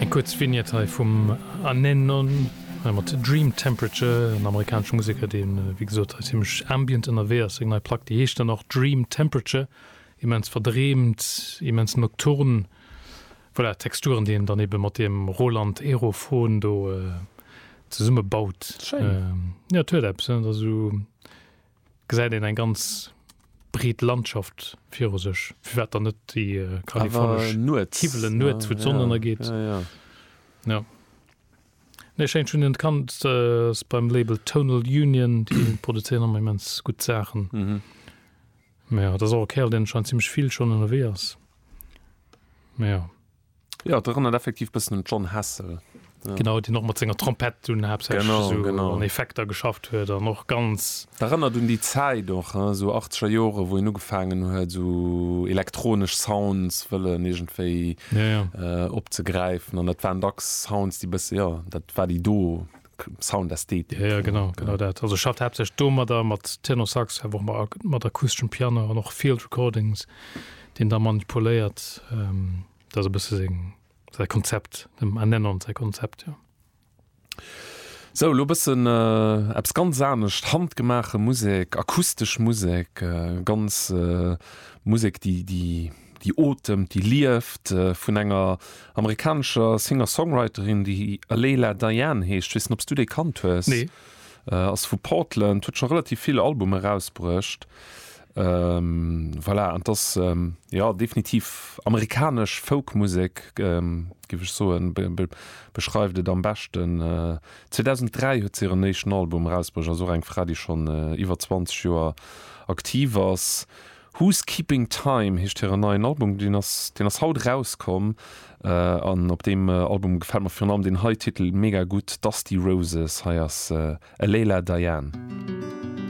Eng kuerz Vignette hei vum Anenon, hei mat Dream Temperature, en amerikanesche Museker, dee wéi gesot hei zimmlech ambient ënnerwee ass. Seng nei Plack, déi heescht dann och Dream Temperature, immens verdreemt, immens nocturn, voilà, Texturen, déi een dann eebe mat deem Roland Aerophon do zesummebaut. Schéin. Jo, et huet eppes, dat ass esou. gesäit een eng ganz breet Landschaft viru sech, firwat dann net déi kalifornesch Awer nuets. Kiwwelen nuets, wou d'Sonn ënnergeet. Ja, ja, ja. Nee, schéin, ech hunn en kannt, ass beim Label Tonal Union, déi produzéieren ëmmer immens gutt Saachen. Mä jo, et ass och e Kerl, deen scheinnt zimmlech vill schonn ënnerwee ass. Mä jo. Jo, et erënnert effektiv bëssen un d'Jon Hassell. Genau, deen och mat senger Trompett dunn haaptsächlech esou an Effekter geschafft huet an och ganz. Erënnert un déi Zäit och, hein, esou Achtzeger Joren, wou hien ugefaangen huet, esou elektronesch Sounds wëllen iergendwéi opzegräifen. An dat waren dacks Sounds, déi bësse, jo, dat war déi do Sound Ästhetik. Ja, ja, genau, genau dat. Also ech schafft haaptsächlech domadder, mat Tenorsax, awer och mat akusteschem Piano an och Field Recordings, déi en da manipuléiert. Ähm, dat ass e bësse seng, säi Konzept, dem Annenon säi Konzept, jo. Sou, elo e bëssen äh, eppes ganz anescht, handgemaache Musek, akustesch Musek, äh, ganz äh, Musek, déi, déi Déi otemt, déi lieft, vun enger amerikanescher Singer-Songwriterin, déi Leila Diane heescht. Ech weess net, ob s du déi kannt hues. Nee. Ass vu Portland, huet scho relativ vill Albume rausbruecht. Voilà, an 't ass, jo, definitiv amerikanesch Folk-Musek, géif ech soen, beschreift et am beschten. 2003 huet se hiren éischten Album erausbruecht, ass och eng Fra, déi schonn iwwer 20 Joer aktiv ass. Who's Keeping Time heescht hiren neien Album, deen ass deen ass haut erauskomm an op deem Album gefält mer virun allem deen hei Titel mega gutt, Dusty Roses. Hei ass e Leila Diane.